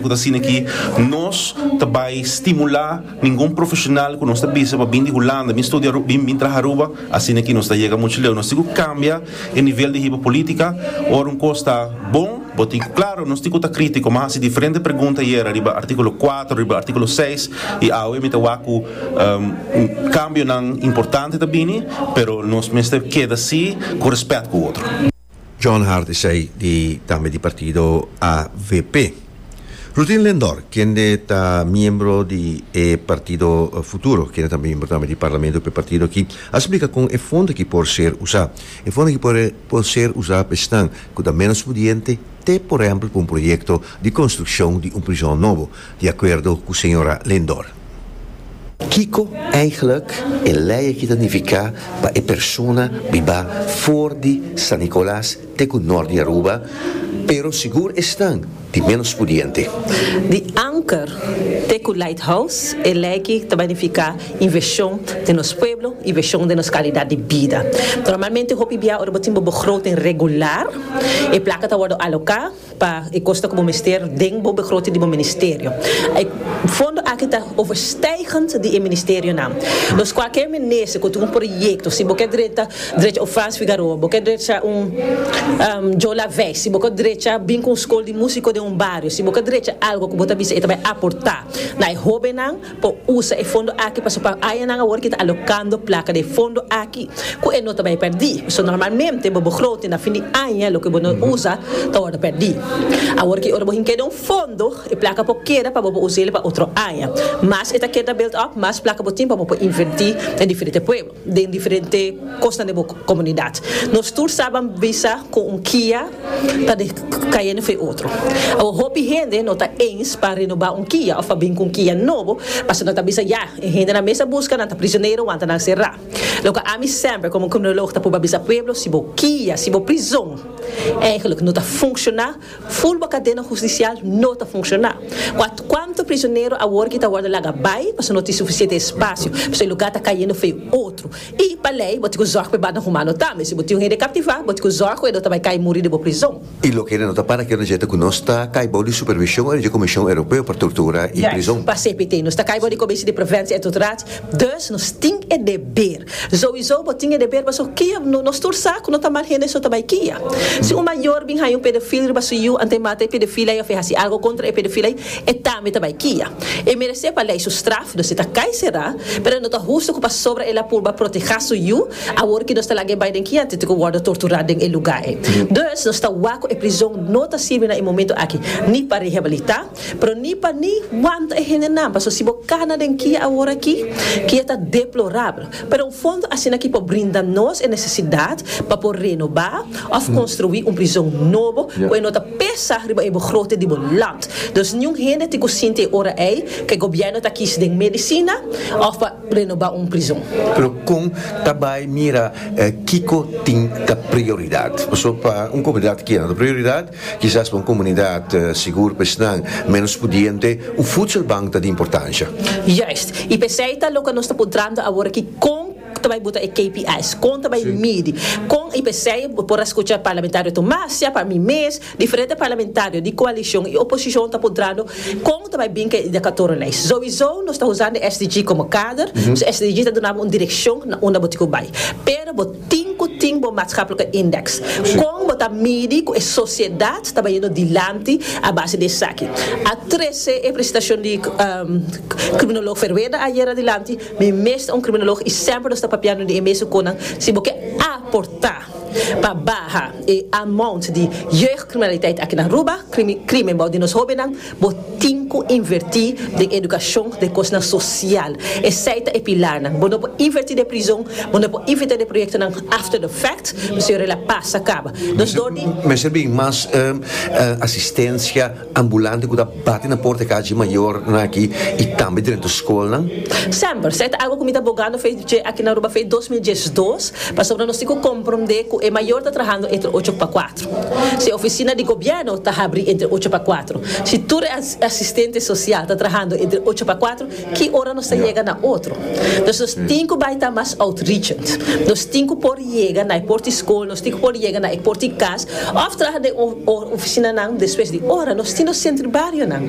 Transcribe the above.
Cu ta asina aki nos ta bay stimula ningun profesional cu nos ta bisa pa bin di Hulanda bin studia Aruba bin traha Aruba asina aki nos ta yega mucho leu nos tin cu cambia e nivel di hiba politica ora un cos ta bon bo tin cu claro nos tin cu ta critico mi a haci diferente pregunta ayer ariba articulo cuatro ariba articulo seis y awe mi ta wak cu cambionan importante ta bini pero nos mester keda si cu respet cu otro. John Hart esei di tambe di partido avp. Rutin Lendor kende ta miembro di e partido Futuro kende ta miembro tambe di parlamento pa e partido aki a splika kon e fondo aki por ser usa. E fondo aki por ser usa pa esnan ku ta menos pudiente te por ehempel pa un proyekto di konstrukshon di un prishon nobo. Di acuerdo cu señora Lindor. Kico eigenlijk e ley aki ta nifica pa e persona biba foor di San Nicolas te cu noord di Aruba, pero sigur esnan di menos pudiente? Di Anker te cu Lighthouse e ley aki ta bai nifica inversion den nos pueblo y version den nos calidad di bida. Normalmente hopi bia ora bo tin bo begroting regular e placa ta wordo aloca. Pa e kos ta ku bo mester den bo begroting di bo ministerio. E fondo aki ta overstijgend di e ministerionan. Nos kualke minister ku tin un proyekto, si bo ke drecha drecha un Frans Figueroa, bo ke drecha un Joe Laveis, si bo ke drecha bin ku un skol di musiko den un bario, si bo ke drecha algu ku bo ta bisa e ta bai aportá na e hóbennan, por usa e fondo aki pasobra pa hañanan awor ki ta alokando plaka den e fondo aki ku e no ta bai pèrdí. So normalmente bo begroting na fin di aña loke bo no usa ta wòrdu pèrdí. Awor ki ora bo hink'é den un fondo e plaka por keda pa bo por usa el pa otro aña. Mas e ta keda built up mas plaka bo tin pa bo por invertí den diferente pueblo. den diferente kosnan den bo komunidat. Nos tur saban bisa ku un kia ta di kayendo for e otro. Awor hopi hende no ta eens pa renobá un kia òf pa bin ku un kia nobo pasobra nan ta bisa ya e hendenan mes ta buska nan ta prisionero wan ta nan será. Loke ami semper komo kriminolog ta proba bisa pueblo si bo kia, si bo prizon, èigelik no ta funshoná, Full bo cadena husticial no ta funciona. Cu cuanto prisionero awor ki ta wordo laga bay pasobra no tin suficiente espacio, pasobra e lugar ta cayendo fe otro. Y pa ley bo tin cu zorg pa e banda humano tambe. Si bo tin un hende captiva bo tin cu zorg cu e no ta bay cay muri den bo prison. Y loke hende no ta para cu nos djenta cu nos ta cay bou di supervision ori dje Comision Europeo pa Tortura y Prison. Yes, pa CPT. Nos ta cay bou di Comisie di Preventie en Torturatie. Dus nos tin e deber. Zowizo bo tin e deber pasobra kia nos tur sa ku no ta mal hende so ta bai kia. Si un mayor bin haña un pedofil riba su yu antes e mata e pedofil ai of e hasi algu kontra e pedofil ai, e tambe ta bai kia. E meresé pa lei su straf, dus e ta kai será, pero no ta hustu ku pasobra el a purba protehá su yu, awor ki nos ta laga e bai den kia antes di ku wòrdu torturá den e lugá ei. Dus nos ta wak ku e prizon no ta sirbi na e momentu aki ni pa rehabilitá, Pero ni pa ni wanta e hendenan, paso si bo kana den kia awor aki, kia ta deplorabel. Pero un fondo asina ki por brinda nos e nesesidat pa por renobá òf konstruí un prizon nobo ku e no ta pesa riba e begroting di bo land. Dus niun hende tin ku sinti e ora ei ku e gobièrnu ta kis den medisina òf pa renobá un prizon. Pero kon ta bai mira kiko tin ta prioridat? Paso pa un komunidat kia no ta prioridat Kisas pa un komunidat sigur pa esnan ménos pudiente, un futselbank ta di importansha. Juist. I p'esei ta loke nos ta puntrando awor aki kon ta bai buta e KPI's, kon ta bai midi, kon i p'esei bo por a skucha Parlamentario Tomas, siá pa mi mes, diferente parlamentario di koalishon i oposishon ta puntrando kon ta bai bin ku e idakatornan ei. Souiso nos ta usando e SDG komo kader, so e SDG ta duna bo un direkshon na unda bo tin ku bai. Pero bo. Tin cu tin bo maatschappelijke index. Con bo ta midi cu e sociedad ta bayendo dilanti a base di esaki? A trece e presentacion di Criminoloog Verweda ayer adilanti, mi mes ta un criminoloog y semper nos ta papiando di e mester conan si bo ke aporta pa baha e amount di jeugdcriminaliteit aki na Aruba, crimen bou di nos hobennan. Bo tin cu inverti den educacion den cosnan social. Esey ta e pilarnan. Bo no por inverti den prizon, bo no por inverti den proyectonan after the fact, pasobra yora la pas a caba. Nos dor di. Mester bin mas asistencia ambulante cu ta bati na porta e cachi mayornan aki y tambe drento scolnan. Semper. Esey ta algo cu mi ta bogando fey dje aki na Aruba fey dos mil diesdos, pasobra nos tin cu compromde cu e mayor ta trahando entre ocho pa cuatro. Si ofisina di gobièrnu ta habrí entre ocho pa kuatro, si tur e asistente sosial ta trahando entre ocho pa kuatro, ki ora nos ta yega na otro? Nos nos tin ku bai ta mas outreachend. Nos tin ku por yega na e por di skol, nos tin ku por yega na e por di kas òf traha den un ofisinanan despues di ora. Nos tin nos sentri barionan.